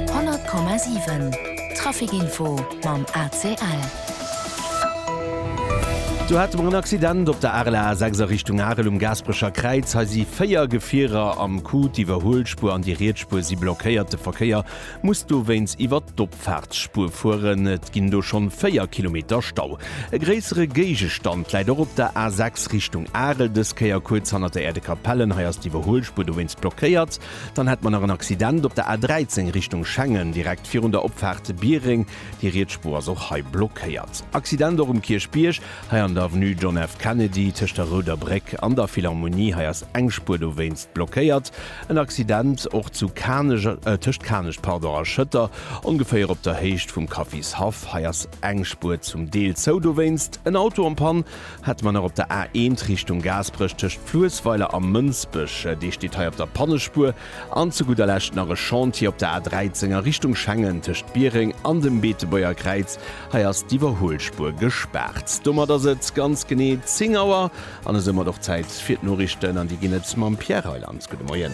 100,7 Traficinfo mam ACL. Do hate mer en Accident op der RLR 6 a Richtung Arel um Gaasperecher Kräiz. Hei si véier Gefierer am Coup, d'Iwwerhuelspuer an déi Rietsspuer si blockéiert. De Verkéier muss dowéinst iwwer d'Opfaartsspuer fueren. Et ginn do schonn véier Kilometer Stau. E gréissere Géigestand läit och op der A 6 Richtung Arel, dës Kéier kuerz hanner der Äerdekapellen. Hei ass d'Iwwerhuelspuer dowéinst blockéiert. Dann hätt mer nach en Accident op der A13 Richtung Schengen, direkt virun der Opfaart Biereng. Déi riets Spuer ass och hei blockéiert. Accident och um Kierchbierg, hei an der Avenue John F. Kennedy, tëscht der Rouder Bréck an der Philharmonie. Hei ass eng Spuer dowéinst blockéiert. En Accident och zu Kanech, tëscht Kanech, pardon, a Schëtter, ongeféier op der Héicht vum Kaffishaff. Hei ass eng Spuer zum Deel zou dowéinst. En Auto en Panne Hätte mer nach op der A1 Richtung Gaasperech tëscht Fluessweiler a Mënsbech, dee steet hei op der Pannespuer, an zu gudder Lescht nach e Chantier op der A13 a Richtung Schengen tëscht Biereng an dem Beetebuerger Kräiz, hei ass d'Iwwerhuelspuer gespaart. Domat ass et ganz genee 10 Auer an esoumat och Zäit fir d'Noriichten an déi ginn et mam Pierre Reyland. Gudde Moien.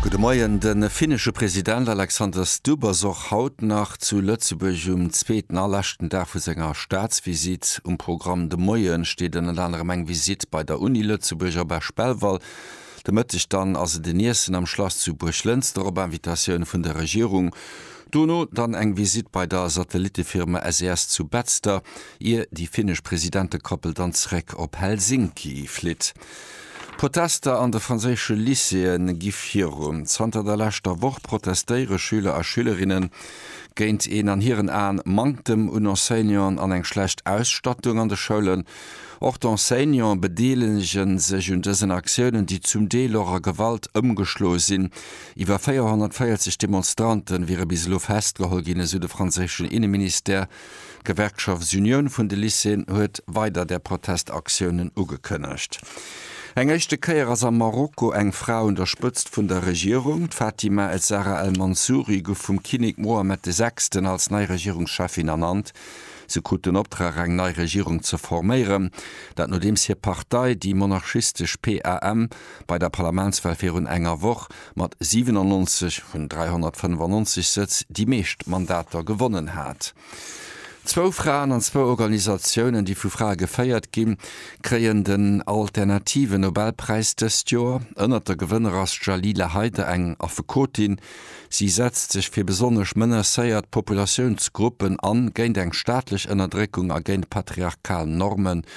Gudde Moien. De finnesche President Alexander Stubb ass och haut nach zu Lëtzebuerg um zweeten a leschten Dag vu senger Staatsvisitt. Um Programm de Moie steet ënnert anerem eng Visitt bei der Uni Lëtzebuerg op Esch-Belval. De Mëtteg dann ass et en Iessen am Schlass zu Buerglënster op Invitatioun vun der Regierung. Dono dann eng Visitt bei der Satellittefirma SES zu Betzder, ier déi finnesch Presidentekoppel dann zeréck op Helsinki flitt. Protester an de franséische Lycéeë gi virun. Zanter der leschter Woch protestéiere Schüler a Schülerinnen géint een, an hiren Aen, Manktem un Enseignanten an eng schlecht Ausstattung an de Schoulen. Och d'Enseignante bedeelege sech un dësen Aktiounen, déi zum Deel och a Gewalt ëmgeschlo sinn. Iwwer 440 Demonstrante wiere bis elo festgeholl ginn, esou de franséischen Inneministère. D'Gewerkschaftsunioun vun de Lycéeën huet weider där Protestaktiounen ugekënnegt. Eng éischte Kéier ass am Marokko eng Fra un der Spëtzt vun der Regierung. D'Fatima Ezzara El Mansouri gouf vum Kinnek Mohammed de Sechsten als nei Regierungscheffin ernannt. Se krut den Optrag eng nei Regierung ze forméieren. Dat nodeems hir Partei, déi monarchistesch PAM, bei der Parlamentswal virun enger Woch mat 97 vun 395 Sëtz déi meescht Mandater gewonnen hat. Zwou Fraen an zwou Organisatiounen, déi vu Frae geféiert ginn, kréien den alternative Nobelpräis dëst Joer. Ënnert de Gewënner ass d'Jalila Haider, eng Affekotin. Si setzt sech fir besonnesch menacéiert Populatiounsgruppen an, géint eng staatlech Ënnerdréckung a géint patriarchal Normen.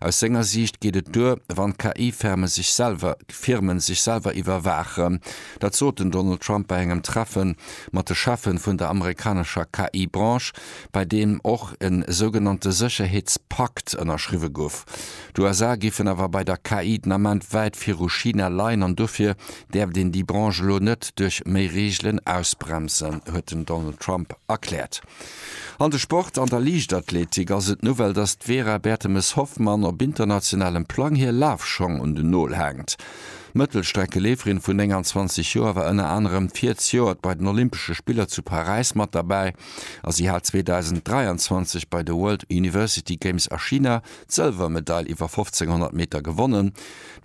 Aus senger Siicht geet et duer, wann KI-Firmen sech selwer Firmen sech selwer iwwerwaachen. Dat sot den Donald Trump bei engem Treffe mat de Cheffen vun der amerikanescher KI-Branche, bei deem och e sougenannte Sécherheetspakt ënnerschriwwe gouf. D'USA géifen awer bei der KI den Ament wäit viru China leien an dofir däerft een déi Branche elo net duerch méi Reegelen ausbremsen, huet den Donald Trump erkläert. An de Sport, An der Liichtathletik ass et d'Nouvelle, datt d'Vera Bertemes-Hoffmann op internationalem Plang hir Lafschong un den Nol haangt. D'Mëttelstreckeleeferin vun 29 Joer war ënner anerem virzijoert bei den Olympesche Spiller zu Paräis mat derbäi a si hat 2023 bei de World University Games a China d'Sëlwermedail iwwer 1500 Meter gewonnen.